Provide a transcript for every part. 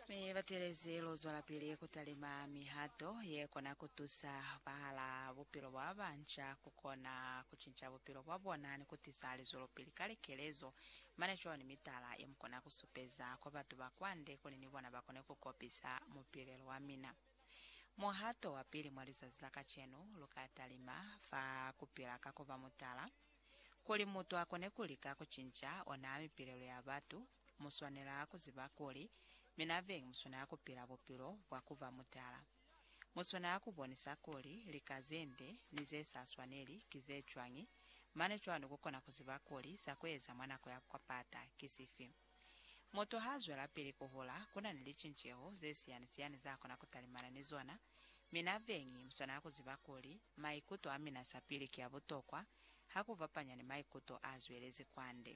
Mi batelezi lu zwelapili ku talima mihato ye kona ku tusa bahala bupilo bwa banca ku kona ku cinca bupilo bwa bona ni ku tisa lizwelopili ka likelezo. Mane cwalo ni mitala ye mu kona ku supeza kwa batu ba kwande kuli ni bona ba kone ku kopisa mupilelo wa mina. Muhato wa pili mwa lizazi la kacenu lu ka talima fa ku pila ka ku ba mutala, kuli mutu a kone ku lika ku cinca ona mipilelo ya batu. Mu swanela ku ziba kuli mina Veng mu swanela ku pila bupilo bwa ku ba mutala. Mu swanela ku bonisa kuli lika ze nde ni ze sa swaneli ki ze cwañi, mane cwalo ku kona ku ziba kuli za ku eza mwa nako ya kwapata ki sifi. Mutu ha zwela pili ku hula, ku na ni licinceho ze siyani-siyani za kona ku talimana ni zona. Mina Veng mu swanela ku ziba kuli maikuto a mina sapili ki a butokwa ha ku fapanya ni maikuto a zwelezi kwande.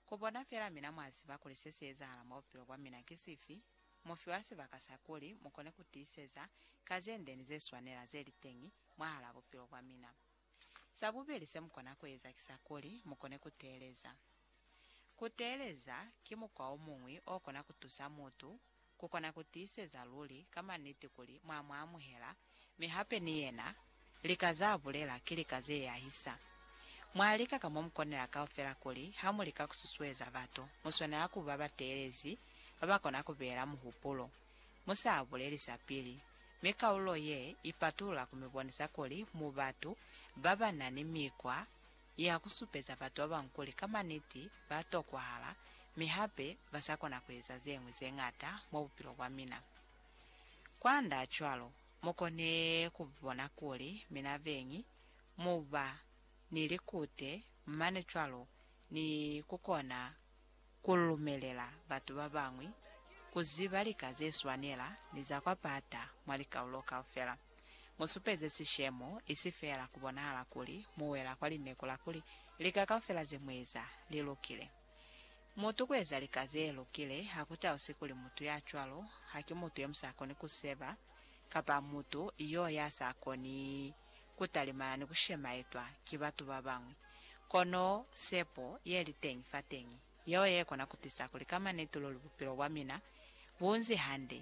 Ku bona fela mina mwa ziba kuli se si ezahala mwa bupilo bwa mina ki sifi, mu fiwa sibaka sa kuli mu kone ku tiiseza ka ze nde ni ze swanela ze li teñi mwahalaa bupilo bwa mina. Sa bubeli se mu kona ku eza ki sa kuli mu kone ku teeleza. Ku teeleza ki mukwa o muñwi o kona ku tusa mutu ku kona ku tiiseza luli ka maniti kuli mwa mu amuhela, mi hape ni yena, lika z'a bulela ki lika ze yahisa. Mwa lika ka mo mu konela kaufela kuli ha mu lika ku susueza batu, mu swanela ku ba bateelezi ba ba kona ku beela muhupulo, mu sa buleli sa pili, mi kaululo ye ipatulula ku mi bonisa kuli mu batu ba ba na ni mikwa ya ku supeza batu ba bañwi kuli ka maniti ba tokwahala mi hape ba sa kona ku eza ze ñwi ze ñata mwa bupilo bwa mina. Kwand'a cwalo, mu kone ku bona kuli mina beñi mu ba ni likute mane cwalo ni ku kona Ku lumelela batu ba bañwi ku ziba lika ze swanela ni za kwa pata mwa likaulo kaufela, mu supeze sishemo, isi feela ku bonahala kuli mu wela kwa lineku la kuli lika kaufela ze mu eza li lukile. Mutu ku eza lika ze lukile ha ku tausi kuli mutu ya cwalo haki mutu yo mu sa koni ku seba kapa mutu yo ya sa koni ku talimana ni ku shemaetwa ki batu ba bañwi. Kono sepo ye li teñi fateñi yeo ye kona ku tisa kuli ka manitululi bupilo bwa mina bu nzi hande.